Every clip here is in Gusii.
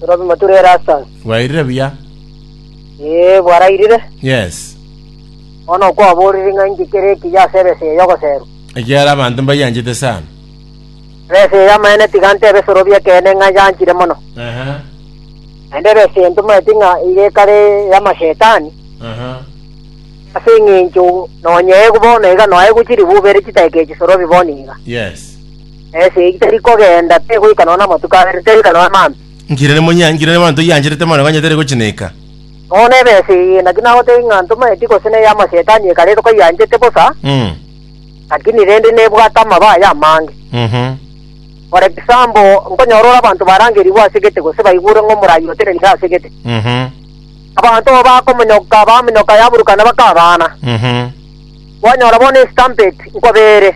Torobimo tore Erastus. Bwairire buya? Ee, bwarairire. Yes. Bono okwaborire ng'a inki kere ekiya ase ebesa eye y'ogoserwa? Ekiagera abanto mbayanchete sana. Ebesa eye y'amaene tiga ntebe esorobia ekeene ng'a yanchire mono. Aha. Naende ebesa eye ntomanyeti ng'a iga ekare ey'amashetani, Aha. ase eng'encho nonya egu bono iga noa egochiri bubere chitaika echisorobia bono iga. Yes. Ense eye teri kogenda, teri goika nonya namatuko abere, teri goika nonya maambia. Nkiira ne monya, nkiira ne manto iancherete mono, onye teri gochineeka. Bono ebe ense eye naki nagotebia ng'a ntomaeti gose neye amasetani ekare eroka ianchete bosa, Mm. lakini rende nebwate amaba aye amange. Mhm. For example, nkonyora ore abanto barangerigwe ase gete gose baigure ng'a omoraai otenenire ase gete. Mhm. Abanto abo bakomonyoka, bamonyoka yaburukana bakabaana. Mhm. Kwanyora bono eStampede nkobeere.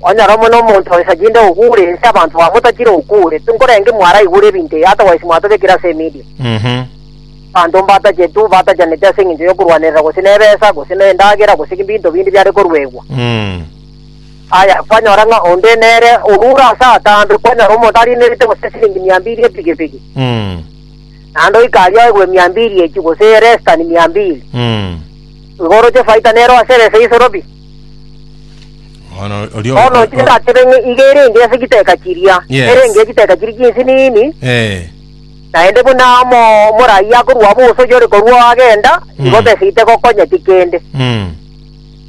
Kwanyora omwe nomonto oisaginde oguure ense abanto bamotakire oguure. Tinkorenge mwaraigure ebinto ebi, otherwise mwatobekire ase emedia. Abanto mbatachetu batachaneti ase engencho yokorwanerera gose nebesa, gose nendagera, gose ebinto binde biare koruegwa. Aya, kwanyora ng'a onde nere orure ase atambe, kwanyora omonto arinerete gose esiringi mia mbiri epigipigi, naende oikaria oegure mia mbiri echio, gose eye less than mia mbiri. Igo oroche efaita nero ase ebesa y'isoro pi. Bono oria Bono o- inche o- ndatebe ng'a iga erenge ase chiteka chiria, Yes. erenge chiteka chiria chinsi nini, Eh, naende buna omo omorai akorua abo gose oyio ore korua agenda, igo Mm. besa itegokonyeti kende. mm,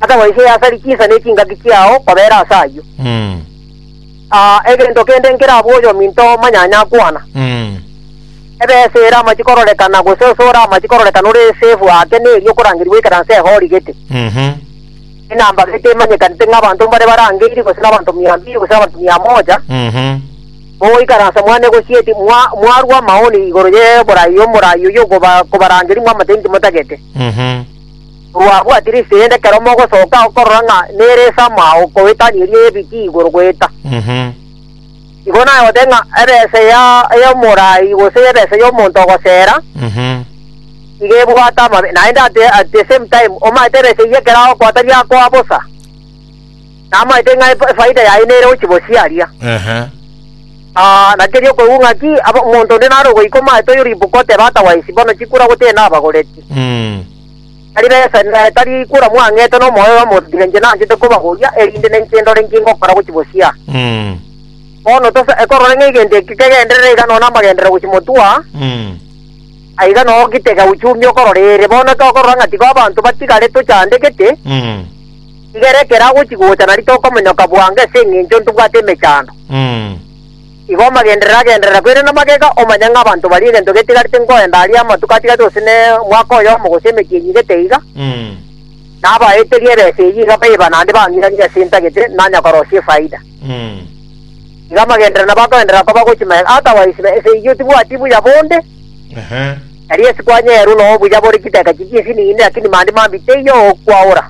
Ata goiseye asari chinsa ne chingaki chiao kobera ase ayio. mm. Aa, egento kende nkerabwo oyominto manyanya akwana. Mm. Ebesa ere amachi kororekana, gose ase ore amachi kororekana ore esefu ake neri okorangerigwa ekeranse ehorigete. Mhm. Enamba gete emanyekanete ng'a abanto mbare barangeiri gose nabanto mia mbiri gose nabanto mia moja. Mhm. Bogo ikaransa mwane gosieti mwa mwarwa amaoni igoro ye borai omorai oyo koba kobarangeri mwa amateini timotagete. Mhm. Korwabwatire esegi ende ekero mogosoka okorora ng'a nere esama okowetania eria y'ebiti igoro goeta. Mhm. Igo naye ogoteba ng'a ebesa ya y'omorai gose y'ebesa y'omonto ogosera Mhm. iga ebwate amabe naende at the, at the same time omaete ebesa eyio ekero agokoa tari akoa bosa namaete ng'a ef- efaida yaye nere gochibosiaria Ehe. Ah, naki erio okoigwa ng'aki aba- omonto onde nare ogoika omaete oyo ribuka oteba otherwise bono chikura gotee nabagoreti Mm. Tari besa inee, tari kura mwang'ete nomoyo oyomotigire inche nanchete kobagoria, erinde ninche ndore inki ngokora gochia bosio? Mm. Bono tose ekorora ng'a egento eke kegenderere iga nonya namagenderere gochia motwa, Mm. aiga noo gitega uchumie okororere. Bono ekero okorora ng'a tiga abanto batigare tochandegete, Mm. tigera ekero agochia gocha nari tokomonyoka bwango ase engencho ntobwate emechando. Mm. Igo omagenderere agenderera koirana namagega, omanye ng'a abanto baria egento getigarete nkoenda aria amatuko atigarete gose ne mwaka oyomo gose emechie eyio igete iga, nabaeterie ebesa eyio iga baiba naende bang'iranie ase entagete, nanya korosia efaida. Iga amagenderero nabo akoenderera koba gochia magega, otherwise besa eyio tibwati buya bonde, erio ase kwanyerwa noo obuya bore chiteka chiria chinsinini, lakini mambia mambia teiyo okwaora.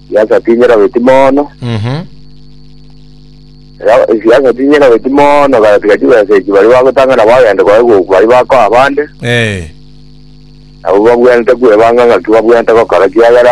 Siasa tinyera beti mono. Mhm. Ra- Siasa tinyera beti mono gatiga chibesa echi bari bagotang'ana bagende kwaye goku bari bakoa abande. Eh. Nabo babwenerete kwebanga ng'aki babwenerete gokora kiagera